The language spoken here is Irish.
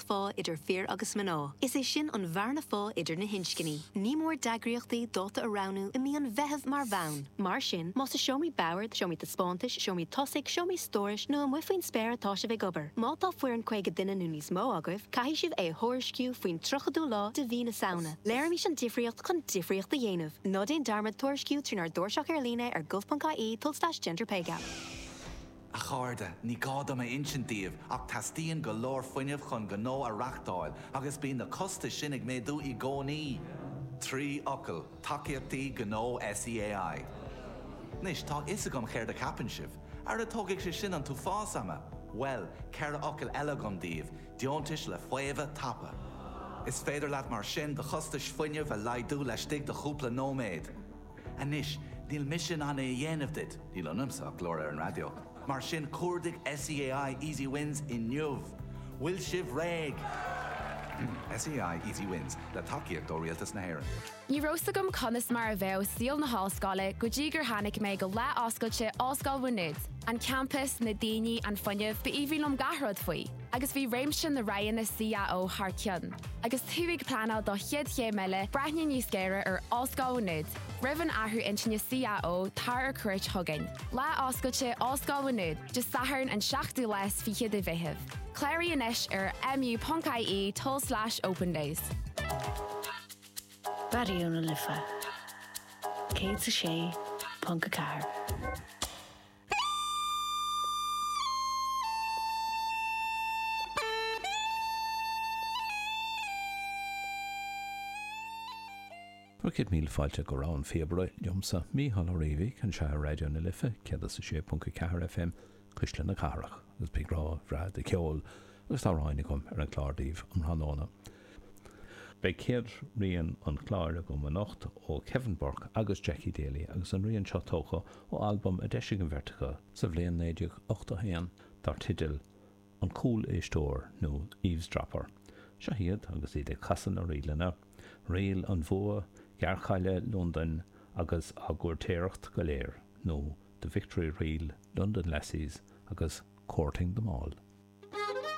bheartaíocht phá idir fir agus mná, is é sin an bhearna phá idir na hinscní. Ní mór d'eagraíochtaí dáta a roghnú i mí an Mheithimh mar bhonn. Mar sin, más i seomraí boird, seomraí taispeántais, seomraí tosaigh, seomraí stórais nó amuigh faoin spéir atá sibh ag obair, má tá foireann 50 duine nó níos mó agaibh, caithfidh sibh é a thuairisciú faoin 30ú lá de mhí na Samhna. Léirímis an difríocht chun difríocht a dhéanamh. Ná déan dearmad tuairisciú trínár dtairseach ar líne ar gov.ie told slash gender pay gap. A chairde, ní gá dom a insint daoibh ach teastaíonn go leor fuinnimh chun gnó a reachtáil agus bíonn na costais sin ag méadú i gcónaí. Trí fhocal, tacaíochtaí gnó SEAI. Anois, tá a fhios agam céard a cheapann sibh. Ara tógfaidh sé sin an t-uafás ama! Bhuel, ceithre fhocal eile agam daoibh, deontais le faomhadh tapa. Is féidir leat mar sin do chostais fuinnimh a laghdú laistigh de chúpla nóiméad. Anois, níl mise in ann é a dhéanamh duit, níl ionamsa ach glór ar an raidió, mar sin cuardaigh SEAI Easy Wins inniu! Bhfuil sibh réidh? SEAI Easy Wins, le tacaíocht ó Rialtas na hÉireann. Ní raibh 's agam conas mar a bheadh saol na hollscoile go dtí gur tháinig mé go lá oscailte Ollscoil Mhá Nuad. An campas, na daoine, an fuinneamh, ba aoibhinn liom gach rud faoi. agus bhí réimse na roghanna CAO thar cionn, agus tú ag pleanáil do chéad chéim eile, breathnaigh níos géire ar Ollscoil Mhá Nuad. Roimh an athrú intinne CAO, tar ar cuairt chugainn. Lá Oscailte Ollscoil Mhá Nuad, Dé Sathairn an 7ú lá is fiche de Mheitheamh. Cláraigh anois ar mu.ie tulslais opendays. Raidió na Life 106.4. Céad míle fáilte go Rogha an Phíobaire liomsa, Mícheál Ó Riabhaigh, anseo ar Raidió na Life 106.4 FM, cuisle na cathrach, agus beidh rogha bhreá de cheol agus d'amhráin agam ar an gclár daoibh um thráthnóna. Beidh céad rian an chláir agam anocht ó Kevin Burke agus Jackie Daly agus an rian seo tógtha ó albam a d'eisigh an bheirt acu sa bhliain 1981 dar teideal An Cúl-Éisteoir nó Eavesdropper. Seo iad agus iad ag casadh na ríleanna, Ríl an Bhua, Gearrchaile Londain agus Á gCúirtéireacht go Léir nó The Victory Reel, London Lassies agus Courting Them All.